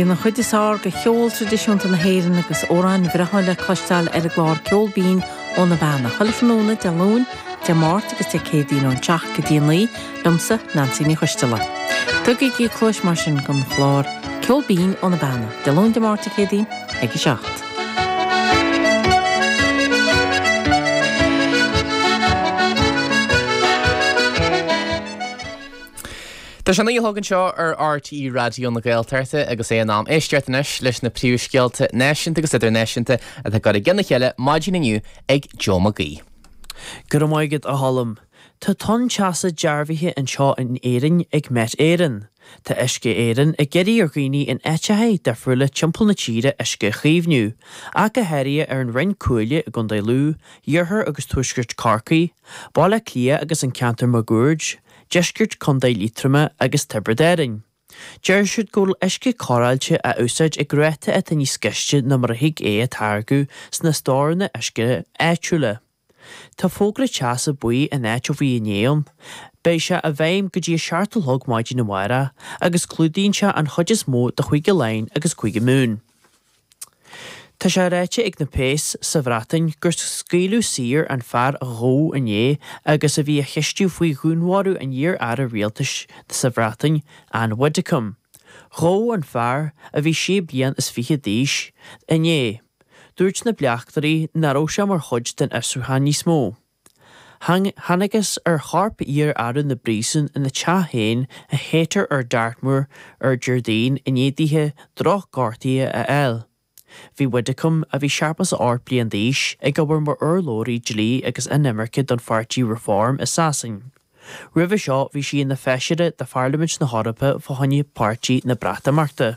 Bíonn an chuid is fearr de cheol traidisiúnta na hÉireann agus amhráin bhreátha le cloisteáil ar an gclár Ceol Binn ó na Beanna, chuile thráthnóna Dé Luain, Dé Máirt agus Dé Céadaoin ón seacht go dtí an naoi, liomsa, Neansaí Ní Choisdealbha. Tugaigí cluais mar sin don chlár Ceol Binn ó na Beanna, Dé Luain, Dé Máirt, Dé Céadaoin ag a seacht. Tá sé a hocht anseo ar RTÉ Raidió na Gaeltachta agus é in am éisteacht anois leis na príomhscéalta náisiúnta agus idirnáisiúnta atá curtha i gceann a chéile maidin inniu ag Joe McGee. Go raibh maith agat, a Cholm. Tá tonn teasa dearbhaithe anseo in Éirinn ag Met Éireann. Tá Uisce Éireann ag iarraidh ar dhaoine in áiteacha difriúla timpeall na tíre uisce a chaomhniú, ach go háirithe ar an Rinn Chuaille i gContae Lú, iarthar agus tuaisceart Chorcaí, Baile Átha Cliath agus an ceantar máguaird. Deisceart Chontae Liatroma agus Tiobraid Árann. Deir siad go bhfuil uisce cóireáilte á úsáid ag ráta atá níos gaiste ná mar a thig é a táirgeadh sna storanna uisce áitiúla. Tá fógra teasa buí in áit ó bhí inné ann. Beidh sé i bhfeidhm go dtí a seacht a chlog maidin amárach agus clúdaíonn sé an chuid is mó de Chúige Laighean agus Cúige Mumhan. Tá sé ráite ag na péas sa Bhreatain gur scaoileadh saor an fear a gabhadh inné agus a bhí á cheistiú faoi dhúnmharú an iar-aire rialtais sa Bhreatain, Ann Widdecombe. Gabhadh an fear, a bhí sé bliain is fiche d'aois, inné. Dúirt na bleachtairí nach raibh sé mar chuid den fhiosrúchán níos mó. Thángthas ar chorp iar-Aire na bPríosún ina teach féin i Haytor ar Dartmoor Déardaoin i ndiaidh daoithe drochghortuithe a fháil. Bhí Widdecombe, a bhí seachtó a hocht bliain d'aois, ag obair mar urlabhraí dlí agus inimirce don pháirtí Reform i Sasain. Roimhe seo bhí sí ina feisire de Pharlaimint na hEorpa fá choinne Pháirtí an Breatimeachta.